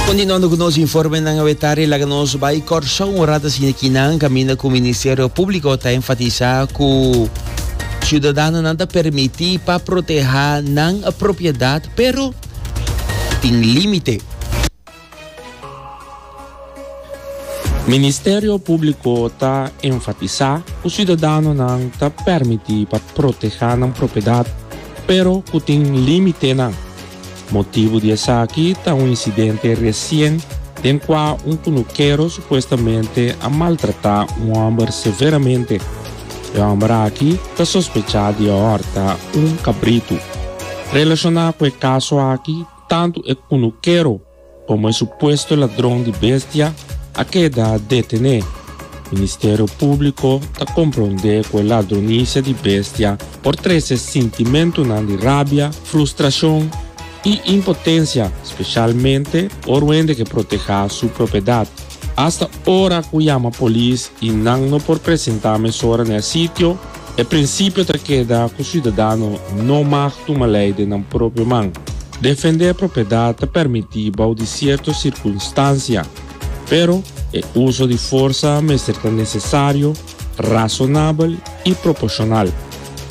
Continuando cu nos informenan awetari laga nos bai Corsou un rat asina aki nan caminda cu Ministerio Publico ta enfatisa cu ciudadanonan ta permiti pa proteha nan propiedad pero tin limite. Ministerio Públiko ta enfatisá ku siudadanonan ta pèrmití pa protehá nan propiedad pero ku tin límitenan. Motibu di esaki ta un insidente resien den kua un kunukero supuestamente a maltratá un hòmber severamente. E hòmber aki ta sospechá di a hòrta un kabritu. Relashoná ku e kaso aki tantu e kunukero, Como e supuesto ladron di bestia a keda detene, Ministerio Publico ta compronde cu e ladronicia di bestia por trece sintimentonan di rabia, frustracion y impotencia, specialmente por wende ke proteha su propiedad. Hasta ora cu yama polis y nan no por presenta mesora n'e sitio, E prinsipio ta keda ku siudadano no mag tuma lei den nan propio man. Defendé propiedat ta permití bou di sierto sirkunstansia, pero e uso di forsa mester ta nesesario, rasonabel i proporshonal.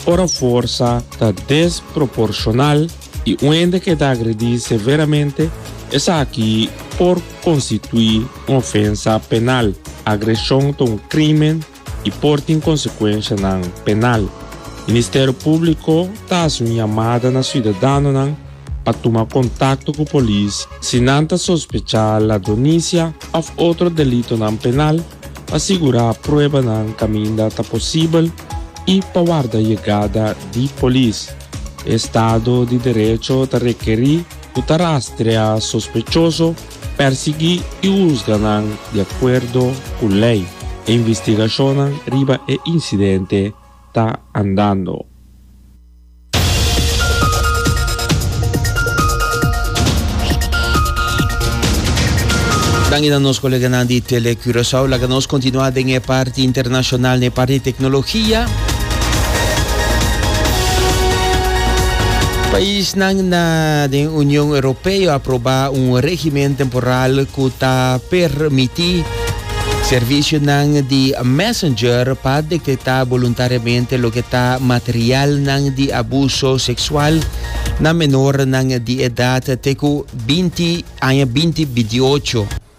Ora forsa ta desproporshonal i un hende keda agredí severamente, esaki por konstituí un ofensa penal. Agreshon ta un krímen. i por tin konsekuenshanan penal. Ministerio Públiko ta hasi un yamada na siudadanonan pa tuma kontakto ku polis si nan ta sospechá ladronisia òf otro delitonan penal pa sigurá pruebanan kaminda ta posibel i pa warda yegada di polis. E Estado di Derecho ta rekerí ku ta rastrea sospechoso Persiguí i husga nan di akuerdo ku lei. E investigashonnan riba e insidente ta andando. Danki na nos koleganan di Tele Curaçao. Laga nos kontinua den e parti internashonal, na e parti teknologia. Pais. Paisnan na den Union Europeo a proba un regimen temporal cu ta permiti servicionan di Messenger pa detecta voluntariamente loke ta materialnan di abuso sexual na menornan di edad te cu binti aña binti bidiucho.